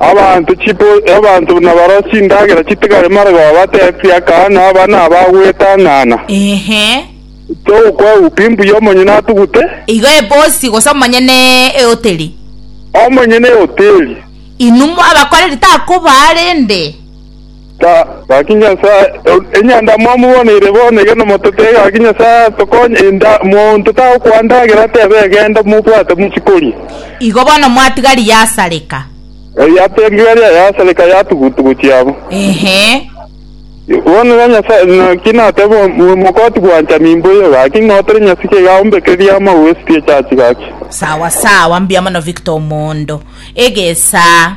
Abanto nabarore chindagera chitigare marega babatebie, Aka naba nabagwetang'ana, togokweguka imbuya omonyene atugute. Igo ebosi gose omonyene eoteri. Omonyene eoteri. Inwe abakoreri takoba arende. Ta, gaki Nyasae, enyanda mwamoboneire bono iga nomotete, gaki Nyasae atokonye, enda, monto tagokoa ndagera tebe egenda mobwate mochie koria. Igo bono mwatigari yasareka. Eh, yatigari yasareka yatugutugu chiabo. Ehe. Bono iga Nyasae, naki natebe o- omokoti gwancha nimboyo, gaki ng'a otore nyasike iga ombekerie amagwe esike echachi, gaki. Sawa sawa, mbuya mono Victor Omondo. Egesaa.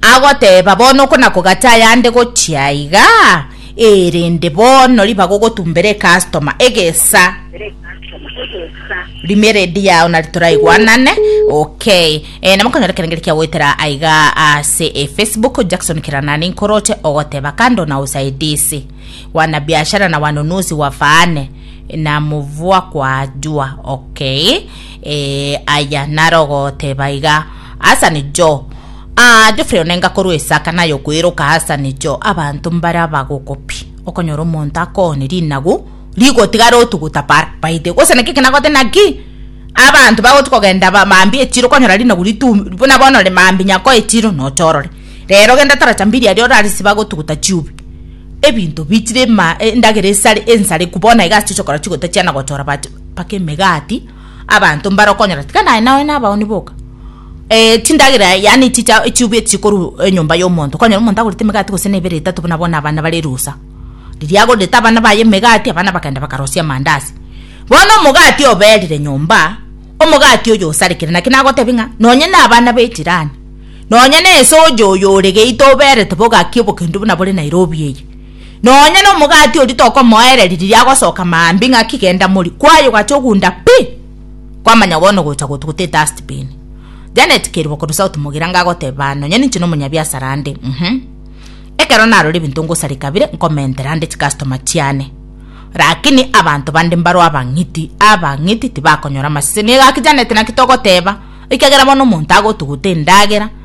Agoteeba, Bono okonakogata ayande gochia aiga, erende bono riba gogotumbera ecustoma egesa rimie ready yao nari toraigwanane okay eh, namo konyora ekerengeri kia goetera aiga ase e facebook jackson kiranani nkoroche ogoteba kando na usaidizi wana biashara na wanunuzi wafaane na mvua kwajua okay eh, aya naro goteba iga Asa nigo aa Geoffrey onenga korwa esaka naye okoeroka asa nigo abanto mbare abagokopi okonyora omonto akoone rinagu rigotigara otuguta par baite gose naki kinagote naki abanto bagoti kogenda ba mambi echiro konyora rinagu ritu buna bono re mambi nyako echiro nochorore rero genda taracha mbiri aria orare siba gotuguta chiubi ebinto bichire ma endagera esare ensareku bono iga achichokora chigota chiana gochora bache mpaka emegati abanto mbare okonyora tiga naye nao nabaoni boka eh, chindagera yani chicha chiubi chikoru enyomba eh, y'omonto okonyora omonto agorete emegati gose na ebere etato buna bono abana bare erusa riria agorete abana baye emegati abana bakagenda bakarosia amandasi bono omogati oberire nyomba omogati oyo osarekire naki nagotebi ng'a nonye na abana be jirani nonye na esoja oyo ore geita oberete bogaki obokendo buna bore Nairobi eye. Nonya nomogati oria tokomoereri riria agosoka maambia ng'aki genda mori kwaye ogacha ogunda pi! Kwamanya bono ogocha gotu gotee dust bin. Janet Kerubo korwa South Mogira nigo agoteba aa nonya ninche nomonyabiasara ande uhum. Ekero narora ebinto ngosareka bire nkomentera ande chicustoma chiane. Rakini abanto bande mbaro abang'iti, abang'iti tibakonyora amasese. Nigo gaki Janet naki togoteba, ekagera bono omonto agotu gotee endagera,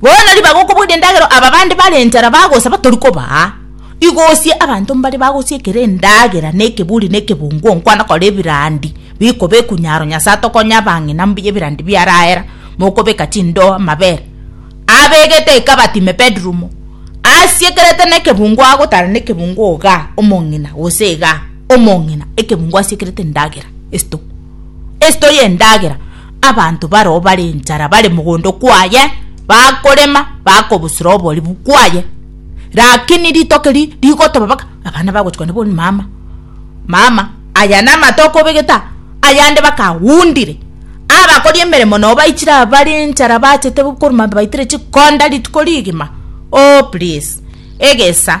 Bono riba gokoboria endagera aba bande bare enchara bagosaba tori kobaa. Igosie abanto mbare bagosie ekero endagera na ekeburi na ekebungu onkwana kore ebirandi bikoba ekunyaro Nyasae atokonye abang'ina mbuya ebirandi biarahera mokobeka chindoa amabere abegete eka batime bedroom asiekerete na ekebungu agotara na ekebungu ogaa omong'ina gose igaa omong'ina ekebungu asiekerete endagera esito esito ya endagera Abanto baroo bare enchara bare mogondo kwaye, bakorema, bakobusura oboribu kwaye. Rakini ritoke ri rigotoba baka abana bagochikwa nabo ni mama, mama, aya namato okobegeta, ayande bakagundire. Abakori emeremo noo baichire aba bare enchara bachete korwa mambia baitire chikonda rituko rigima. Oh, please. Egesa.